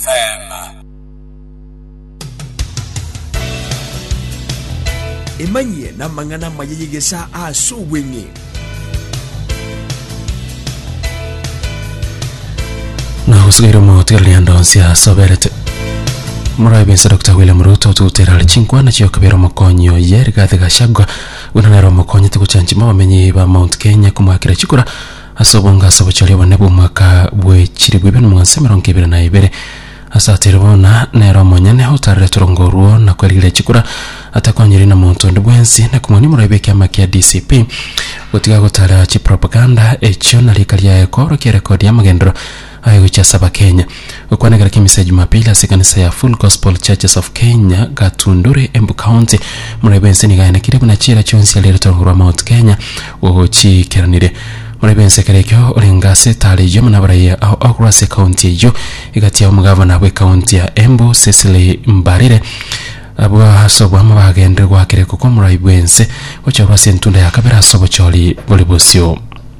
Selah. Emanyie namang'ana amaya y'egesaa aase obweng'e. na usigaire omotwe rienda onsi asoberete murabe inse dr william ruto tugutera ari chinkwana chiokabera omokonyi oye rigathi gachagua buna nero omokonyi tiguchanchima abamenyi ba mount kenya kumwakira chikura Ase obong'aasi obochori obonene bw'omwaka bwe chilifu ibere na magana ase emerongo ebere na ibere, ase atiri bono nere omonyene otarerete orongo orwo na kwerigereria chikura, atakwanyereirie na monto onde bwensi, na komwania omoroio bw'ekiama kia DCP gotiga gotara chipropaganda echio na riika riaye koorokia erekodi y'amagenderero Aye gochia ase Abakenya. Gokwana egera ki'emisa ya Jumapili ase ekanisa ya Full Gospel Churches of Kenya, Gatundure, Embu County, moraia bw'ense nigo ayanekire buna chiira chionsi are ritogo rwa Mount Kenya gochiikeranire. Moraia bw'ense ekero ekio orenge ase etaara eyio buna abaraiyo ao akorwa ase ekaunti eyio egati ya omogavana bw'ekaunti ya Embu Cecily Mbarire abwo ase oboamo bagenderire goaka erekoko moraia bw'ense gocha korwa ase entunda ya kabere ase obochori bore bosio.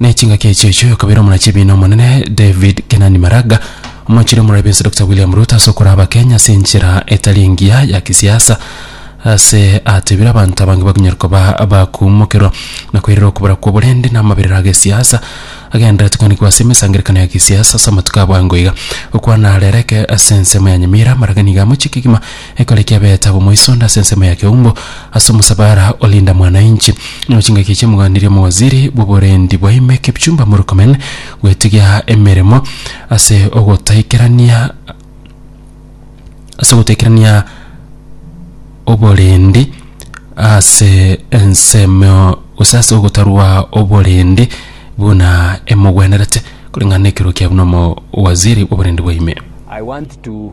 Ne chingaki echi echo yokabera omuna chibi na omonene David Kenani Maraga omochire omurabi bwense Dr. William Ruto ase okora abakenya ase enchera etari engiya ya kisiasa ase atebire abanto abange bakonyara koba abakumokerwa na koirera okobora kwa oborende na amaberero agesiasa agenderete koanikwa ase emesangerekano ya kisiasa ase amatuko abwango iga okwana arereke ase ensemo ya Nyamira Maraga niga amochie kegima Ekore kiabete agwo moiso onde ase ensemo ya keumbu, ase omosabara o Linda Mwananchi, na chingaki echi omoganda ria omowaziri bw'oborendi bwa ime Kipchumba Murkomen gwetigia emeremo ase ogotaikerania ase ogotaikerania oborendi ase ensemo gose ase ogotarwa oborendi buna emogwenerete koreng'ana na ekerogo kiabo na omowaziri bw'oborendi bwa ime. I want to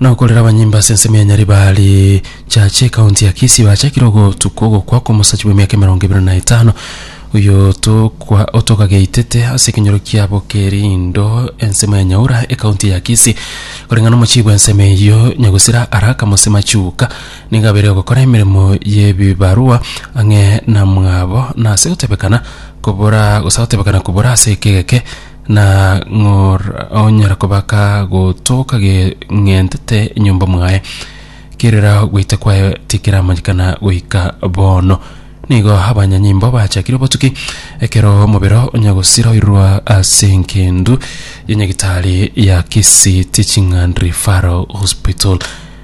Nokorera abanyimbo ase ensemo ya Nyaribari Church ekaunti ya Kisii bachakire ogotuka ogokwa kw'omosacha bw'emiaka emerongo ebere na etano oyo tokwa otokageitete ase ekenyoro kia Bokerindo ensemo ya Nyaura ekaunti ya Kisii koreng'ana omochii bw'ensemo eyio Nyagusira Araka Mose Machuka nigo abeire ogokora emeremo y'ebibarua ang'e na mwabo na ase gotebekana kobora gose gotebekana kobora ase ekegeke Na ng'or onyara kobaka gotoka geng'entete enyomba mwaye, kerera gwaita kwaye tikeramanyekana goika bono. Nigo abanyanyimbo bachakire obotuki, ekero omobero onyagosiroirwa ase engendu ya nyagitari ya Kisii Teaching and Referral Hospital.